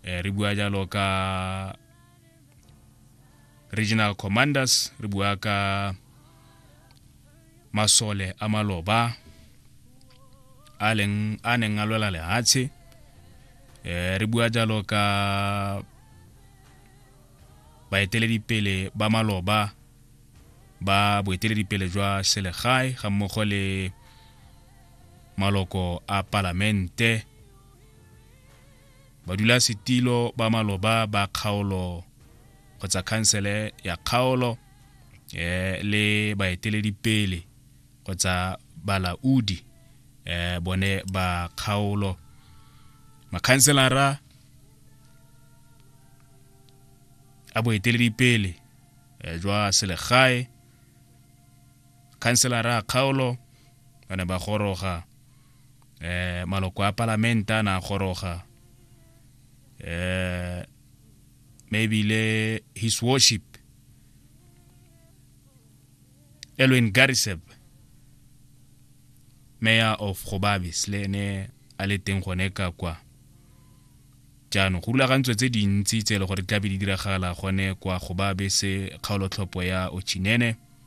eh, re bua jalo ka regional commanders re bua ka masole a maloba a leng a neng a lwela lehatshe eh re bua jalo ka baeteledipele ba maloba ba boeteledipele jwa selegae ga mmogo le maloko a palamente Badulasetilo ba maloba ba kgaolo kgotsa khansele ya kgaolo eh, le baeteledipele kgotsa balaodi eh, bone ba kgaolo makhanselara a boeteledipele eh, jwa selegae khanselara a kgaolo ba ne ba goroga um maloko a palamente a na a goroga um maybe le his worship elwin gariseb mayor of gobabis le ene a le teng gone ka kwa jaanong go rulagantswe tse dintsi tse e le gore tlabe di diragala gone kwa gobabe se kgaolotlhopho ya ochinene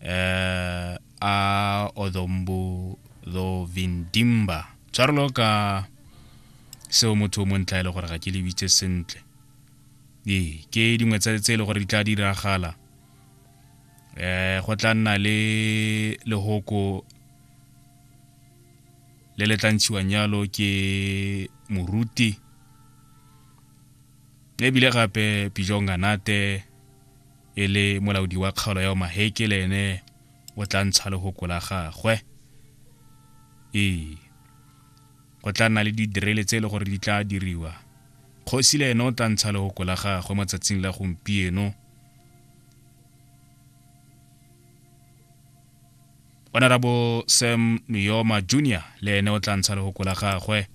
eh, a odombu tho vindimba tshwarelo ka seo motho o montla e le gore ga ke lebitse sentle ee ke dingwe tse tse e le gore di tla diragala eh go tla nna le lehoko le le tla ntshiwang jalo ke moruti ebile gape pijong ganate e le molaodi wa kgaolo ya omaheke le ene o tla ntsha legoko la gagwe ee go tla nna le didirele tse e le gore di tla diriwa kgosi le ene o tla ntsha legoko la gagwe mo tsatsing la gompieno o na ra bo sam miyoma junior le ene o tla ntsha legoko la gagwe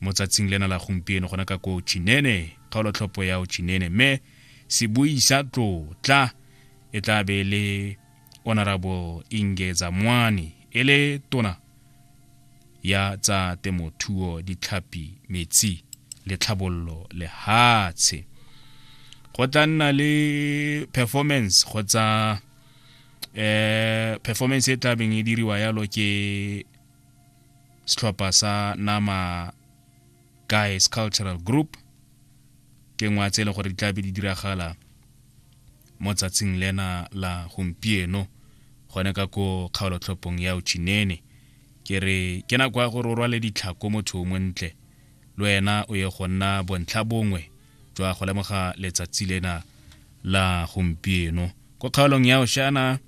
mo tsatsing lena la gompieno gona ka ko chinene kgaolotlhopho ya o chinene mme sebui sa tlotla e tla be le honorable ingeza mwani e le tona ya tsa temothuo ditlhapi metsi le tlhabololo lehatshe go tla nna le performance kgotsa eh performance e tlabeng e diriwa yalo ke setlhopha sa nama guys cultural group ke ngwa tse e leng gore di tlabe di diragala mo tsatsing lena la gompieno gone ka ko kgaolotlhopong ya ochinene ke re ke nako ya gore o rwale ditlhako motho o montle le wena o ye go nna bontlha bongwe jwa go lemoga letsatsi lena la gompieno ko kgaolong ya oshana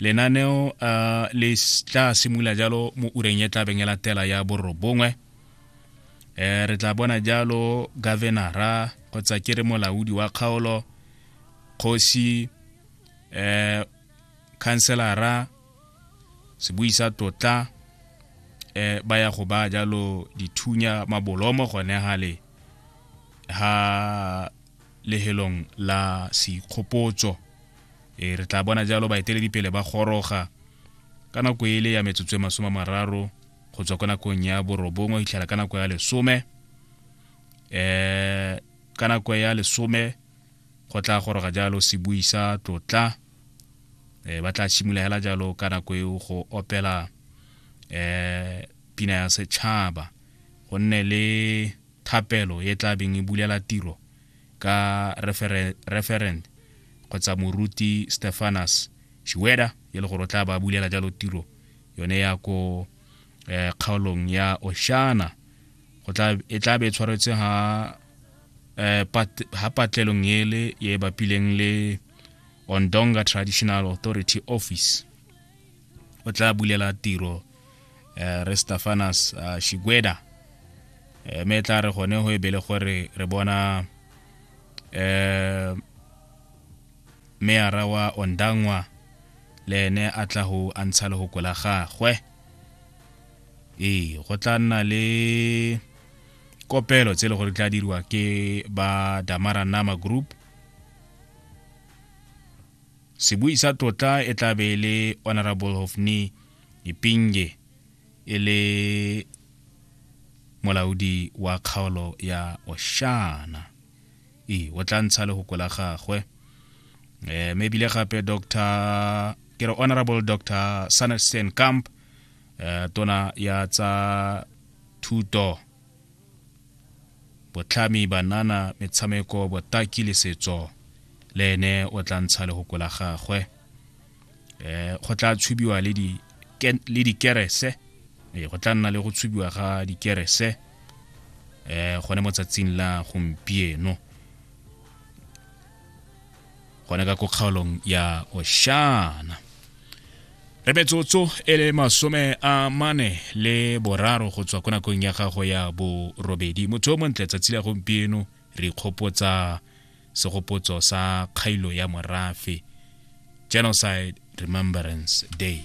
lenaneo uh, le tla simolola jalo mo ureng e tlabeng e latela ya borobongwe um re tla bona jalo governora kgotsa ke re molaodi wa kgaolo kgosi um khanselara sebui sa totla um ba ya go ba jalo dithunya mabolomo gone gale ha lehelong la seikgopotso e re tla bona jalo baeteledipele ba goroga ka nako e le ya metsotso e masome a mararo go tswa ko nakong ya borobongwe go itlhela ka nako ya lesome um ka nako ya lesome go tla goroga jalo se buisa tlotla um ba tla simologela jalo ka nako eo go opela um pina ya setšhaba go nne le thapelo e tla beng e bulela tiro ka referent kgotsa moruti stefanus shiweda e le gore o tla ba bulela jalo tiro yone ya ko eh, kgaolong ya oshana e tla be e tshwaretse ha eh, ha patlelong ele e bapileng le ondonga traditional authority office o tla bulela tiro uh, re stafanas uh, eh, shigweda um eh, me tla re gone go e bele gore re bona um meara wa ondangwa le ene a tla go a ntsha le go kola gagwe ee go tla nna le kopelo tse e le gore tla diriwa ke ba damara nama group sebui sa tlotla e tla be e le honorable hofni ipinge e le molaodi wa kgaolo ya oshana e o tla ntsha le go la gagwe um mme ebile gape dr ke re honorable dr sanderson camp um eh, tona ya tsa thuto Botlhami, banana, metshameko, botaki le setso le ene o tla ntsha lehoko la gagwe um go tla tshubiwa le dikerese ee go tla nna le go tshubiwa ga dikerese um gone mo tsatsing la gompieno gona ka ko kgaolong ya oshana re metsotso e le masome a mane le boraro go tswa ko nakong ya gago ya borobedi motho o montle tsatsi la gompieno re ikgopotsa segopotso sa kgailo ya morafe genocide remembrance day